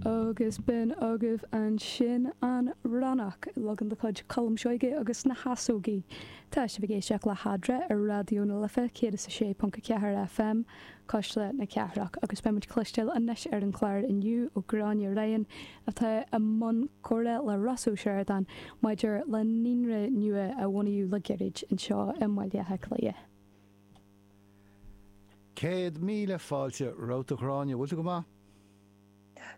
Agus b'in agaibh ansin an Ronnach, leagan de chuid Cholm Seoige agus na hEasógaí. Tá sibh ag éisteacht le hEadra ar Raidió na Life 106.4 FM, ceithre choirnéal na cathrach, agus beidh muid cloisteáil anois ar an chlár inniu ó Gráinne Ryan atá i mbun comhrá le Ross Ó Sioradáin maidir le naíonra nua a bunaíodh le gairid anseo i mBaile Átha Cliath. Céad míle fáilte romhat a Ghráinne, bhfuil tú go maith?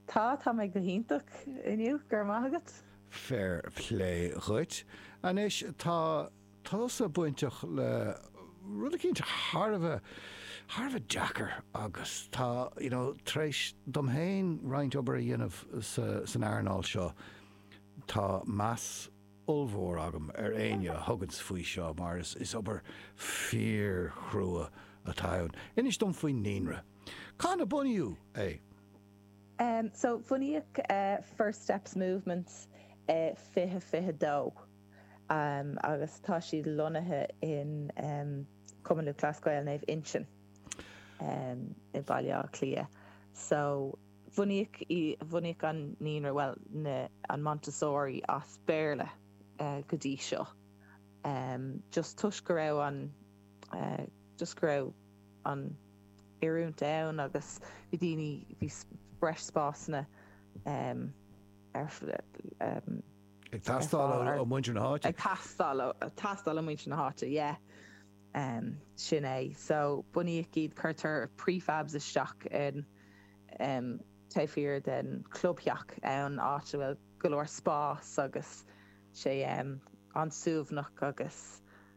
Tá, tá mé go hiontach inniu, go raibh maith agat. Fair plé dhuit. Anois tá tusa bainteach le rud eicínt thar a bheith, thar a bheith deacair agus tá, you know, tar éis dom féin roinnt obair a dhéanamh san earnáil seo, tá meas, ollmhór agam ar éinne a thugann faoi seo mar is obair fíor-chruaidh atá ann. Inis dom faoin Naíonra. Cathain a bunaíodh é? So, bhunaíodh First Steps Movement i fiche fiche dó agus tá siad lonnaithe in Cumann Lúthchleas Gael Naomh Uinseann i Baile Átha Cliath. So. Bhunaíodh í, bhunaíodh an naíonra, bhuel na, an Montessori as Béarla go dtí seo ehm just toisc go raibh an eh just go raibh an oiliúint ann agus bhí daoine, bhí breis spásanna ehm ar ehm ag teastáil ó muintir na háite. ag teastáil ó, teastáil ó muintir na háite yeah. Um. Sin é. So, bunaíodh iad, cuirtear prefabs isteach in, um, taobh thiar den chlubtheach ann, áit a bhfuil go leor spás agus sé, um, an-suaimhneach agus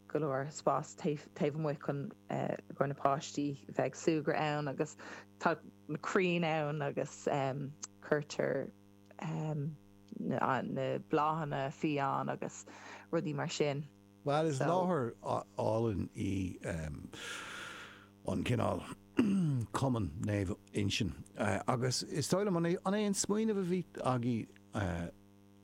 go leor spás taobh, taobh amuigh chun, eh, do na páistí bheith ag súgradh ann agus tá na crainn ann agus, um, cuirtear, um, na, na bláthanna fiáin agus rudaí mar sin. Bhuel, is láthair álainn í an cineál Cumann Naomh Uinseann agus is dóigh liom, an é an smaoineamh a bhí agaibh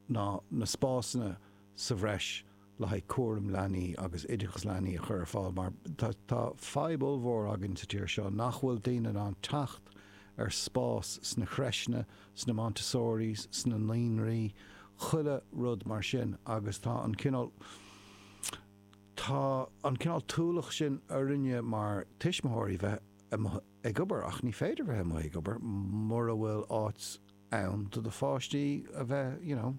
ná na spásanna sa bhreis le haghaidh cúram leanaí agus oideachas leanaí a chur ar fáil mar tá fadhb ollmhór againn sa tír seo nach bhfuil daoine in ann teacht ar spás sna creiseanna sna Montessoris, sna naíonraí, chuile rud mar sin agus tá an cineál, tá an cineál t-ualach sin orainne mar tuismitheoirí bheith amuigh ag obair ach ní féidir bheith amuigh ag obair mura bhfuil áit ann do do pháistí a bheith you know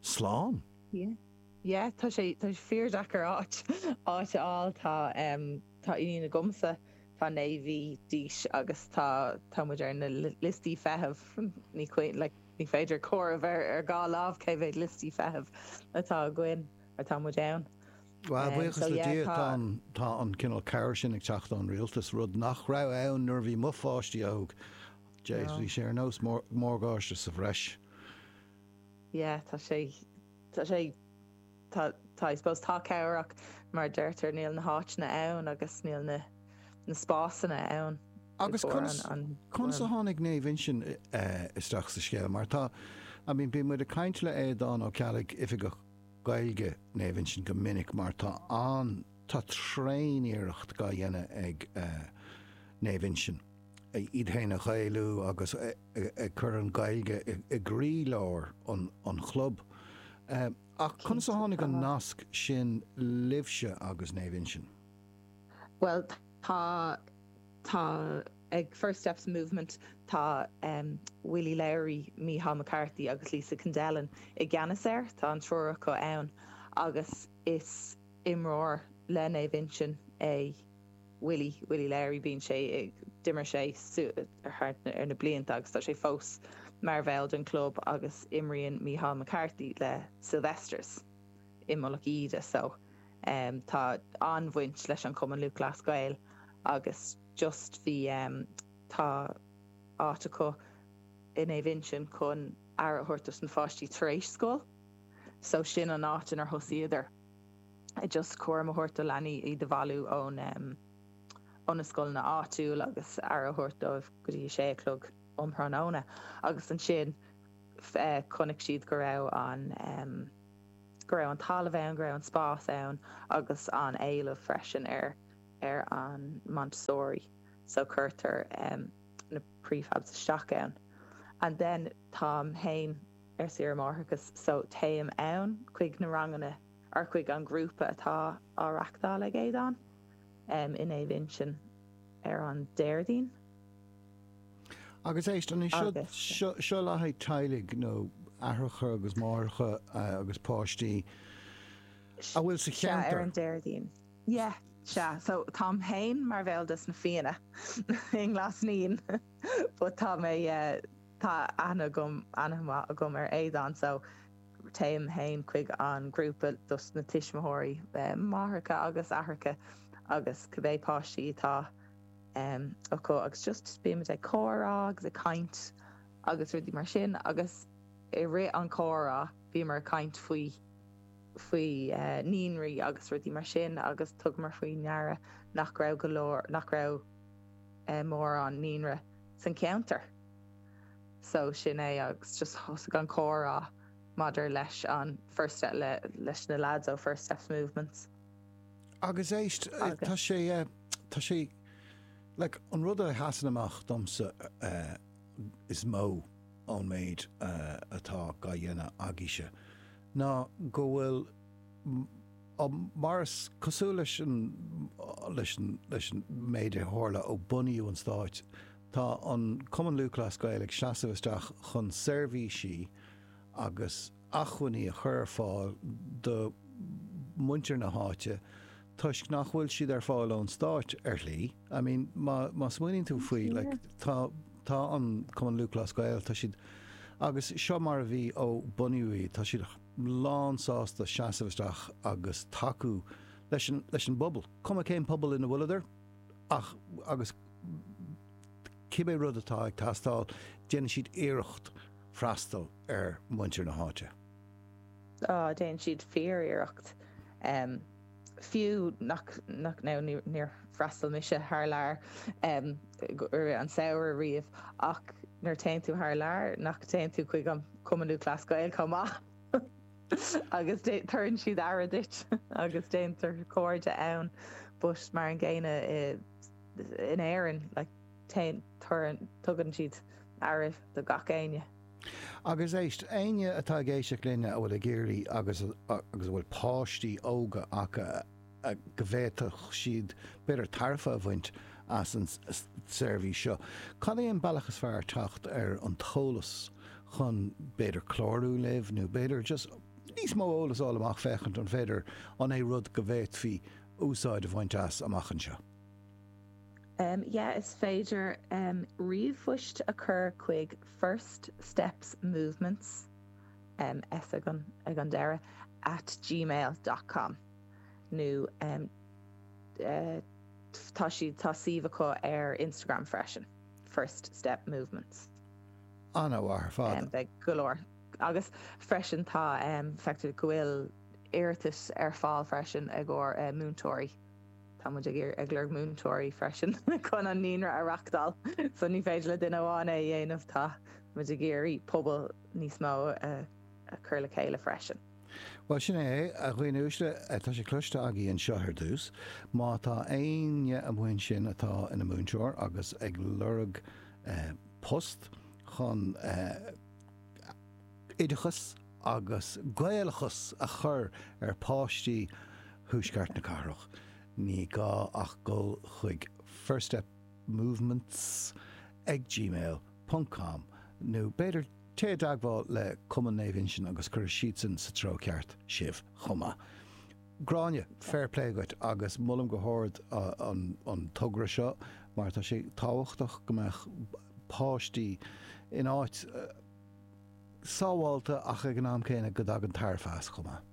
slán. Yeah, yeah tá sé, tá sé fíor deacair áit, áit a fháil tá em. Tá iníon agamsa, tá naoi mhí d'aois agus tá, tá muid ar na liostaí feithimh, like, ní féidir comhaireamh ar, ar dhá lámh cé mhéad liostaí feithimh atá againn, or tá muid ann. Bhuel, Um, buíochas le Dia, tá tá, an, tá an cineál cabhair sin ag teacht ón Rialtas, rud nach raibh ann nuair a bhí mo pháistí óg. Jeez, bhí no. sé ar nós mór, morgáiste sa bhreis. Yeah, tá sé, tá sé. tá, tá, I suppose, tá cabhair ann ach mar a deirtear níl na háiteanna ann agus níl na, na spásanna ann. Agus conas, conas a tháinig Naomh Uinseann isteach sa scéal mar tá, I mean bíonn muid ag caint le Aodán Ó Ceallaigh, Oifigeach Gaeilge Naomh Uinseann go minic mar tá an, tá tréan-iarracht dhá dhéanamh ag Naomh Uinseann iad fhéin a Ghaelú agus ag cur an Ghaeilge i gcroí-lár an chlub. Ach conas a tháinig an nasc sin libhse agus Naomh Uinseann? Bhuel tá, tá, ag First Steps Movement tá ehm Willie Lowry, Micheál McCarthy agus Lisa Kendellen i gceannas air, tá an triúr acu ann agus is imreoir le Naomh Uinseann é. Willie, Willie Lowry, bíonn sé ag, d'imir sé thar na blianta agus tá sé fós mar bhall den club agus imríonn Micheál McCarthy le Sylvesters i Mullach Íde so tá an-bhaint leis an Chumann Lúthchleas Gael agus just bhí, tá áit acu i Naomh Uinseann chun aire a thabhairt dos na pháistí tar éis scoil so sin an áit inar thosaíodar. just cúram a thabhairt do leanaí, iad a bhailiú ón em ó na scoileanna áitiúil agus aire a thabhairt dóibh go dtí a sé a chlog um thráthnóna agus ansin eh chonaic siad go raibh an em go raibh an talamh ann, go raibh an spás ann agus an éileamh freisin ar ar an Montessori so cuireadar em na prefabs isteach ann and then táim fhéin ar saoire máithreachais so téim ann chuig na ranganna ar chuig an ghrúpa atá á reachtáil ag Aodán in Naomh Uinseann ar an Déardaoin. Agus éist, an é seo le haghaidh teaghlaigh nó aithreacha agus máithreacha agus páistí a bhfuil sa cheantar? Sea, ar an Déardaoin. Yeah, sea, so táim féin mar bhall de sna Fianna i nGlas Naíon but tá mé, tá aithne agam, an-mhaith agam ar Aodán so, Téim féin chuig an grúpa dos na tuismitheoirí, máithreacha agus aithreacha agus cibé páistí atá acu agus just bímid ag comhrá agus ag caint agus rudaí mar sin agus i rith an chomhrá bhíomar ag caint faoi faoi naíonraí agus rudaí mar sin agus tugamar faoi ndeara nach raibh go leor, nach raibh mórán naíonra san cheantar. So sin é agus just thosaigh an comhrá maidir leis an First Step, le, leis na lads ó First Steps Movement. Agus éist, tá sé, tá sé, like, an rud a sheasann amach domsa is mó ón méid atá á dhéanamh agaíse ná go bhfuil, mar is cosúil leis an, leis an, leis an méid a tharla ó bunaíodh an Stáit Tá an Cumann Lúthchleas Gael ag seasamh isteach chun seirbhísí agus achmhainní a chur ar fáil do mhuintir na háite toisc nach bhfuil siad ar fáil ón stáit ar shlí. I mean má smaoiníonn tú faoi like tá tá an Cumann Lúthchleas Gael tá siad agus seo mar a bhí ó bunaíodh iad tá siad lán sásta seasamh isteach agus tacú leis an leis an bpobal cuma cén pobal ina bhfuileadar. Ach, agus cibé rud atá ag teastáil, déanann siad iarracht freastal ar mhuintir na háite. Á, déanann siad fíor-iarracht. Fiú nach, nach, now níor fhreastail mise thar lear i rith an samhradh riamh ach nuair a théann tú thar lear, nach téann tú chuig an Cumann Lúthchleas Gael chomh maith? Agus tugann siad aire duit agus déantar cairde ann but mar an gcéanna in Éirinn like tugann siad aire do gach éinne. Agus éist, éinne atá ag éisteacht linne a bhfuil ag iarraidh agus a bhfuil páistí óga acu a. go bhféadfadh siad b'fhéidir tairbhe a bhaint as an seirbhís seo. Cad é an bealach is fearr teacht ar an t-eolas chun b'fhéidir clárú libh nó b'fhéidir just níos mó eolas a fháil amach féachaint an féidir an é rud go bhféadfaí úsáid a bhaint as amach anseo? Yeah is féidir ríomhphost a chur chuig First Steps Movements, S ag an deireadh, at gmail dot com. nó tá siad tá suíomh acu ar Instagram freisin First Step Movements. Ana-mhaith ar fad. Beidh go leor agus freisin tá feictear go bhfuil iarratais ar fáil freisin ag ár múinteoirí. Tá muid ag ag lorg múinteoirí freisin chun an Naíonra a reáchtáil so ní féidir le duine amháin é a dhéanamh tá muid ag iarraidh pobal níos mó a cur le chéile freisin. Bhuel, sin é, a dhaoine uaisle, tá sé cloiste agaibh anseo ar dtús, má tá éinne amuigh ansin atá ina múinteoir agus ag lorg post chun oideachas agus Gaelachas a chur ar pháistí thuaisceart na cathrach, ní gá ach dhul chuig First Step Movements ag gmail ponc com nó b'fhéidir, Téigh i dteagmháil le Cumann Naomh Uinsinn agus cuirfidh siadsan sa treo ceart sibh chomh maith. Gráinne, Fair play dhuit agus molaim go hard an togra seo mar tá sé tábhachtach go mbeadh páistí in áit sábháilte ach ag an am céanna go dtagann tairbhe as chomh maith.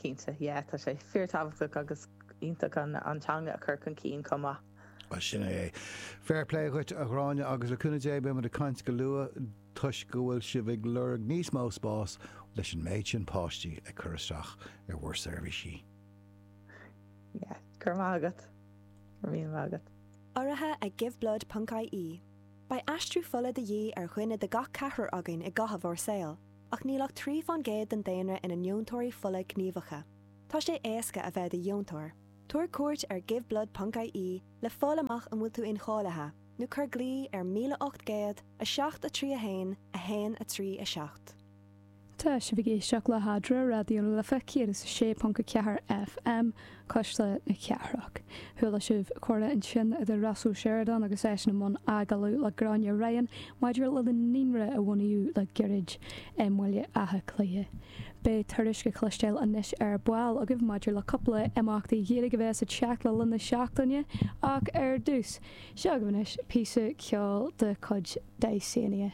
Cinnte, yeah tá sé fíor tábhachtach agus iontach an teanga a chur chun cinn chomh maith. Bhuel, sin é é. Fair play dhuit, a Ghráinne, agus le cúnamh Dé beimid ag caint go luath toisc go bhfuil sibh ag lorg níos mó spás leis an méid sin páistí ag cur isteach ar bhur seirbhísí. Yeah, go raibh maith agat. Go raibh míle maith agat. Urraithe ag Giveblood.ie, Beidh aistriú fola de dhíth ar dhuine de gach ceathrar againn i gcaitheamh ár saoil, ach níl ach trí faoin gcéad den daonra ina ndeontóirí fola gníomhacha. Tá sé éasca a bheith i do dheontóir. Tabhair cuairt ar giveblood.ie le fáil amach an bhfuil tú incháilithe, nó cuir glao ar 1800 7 3 1 1 3 7. Tá sibh ag éisteacht le hEadra Raidió na Life 106.4 FM, cuisle na cathrach. Chuala sibh comhrá ansin idir Ross Ó Seireadáin agus eisean i mbun agallaimh le Gráinne Ryan maidir lena naíonra a bunaíodh le gairid i mBaile Átha Cliath. Beidh tuairisc le cloisteáil anois ar ball agaibh maidir le cúpla imeachtaí Gaeilge a bheas ag teacht le linn na seachtaine ach ar dtús, seo agaibh anois píosa ceoil de chuid Dysania.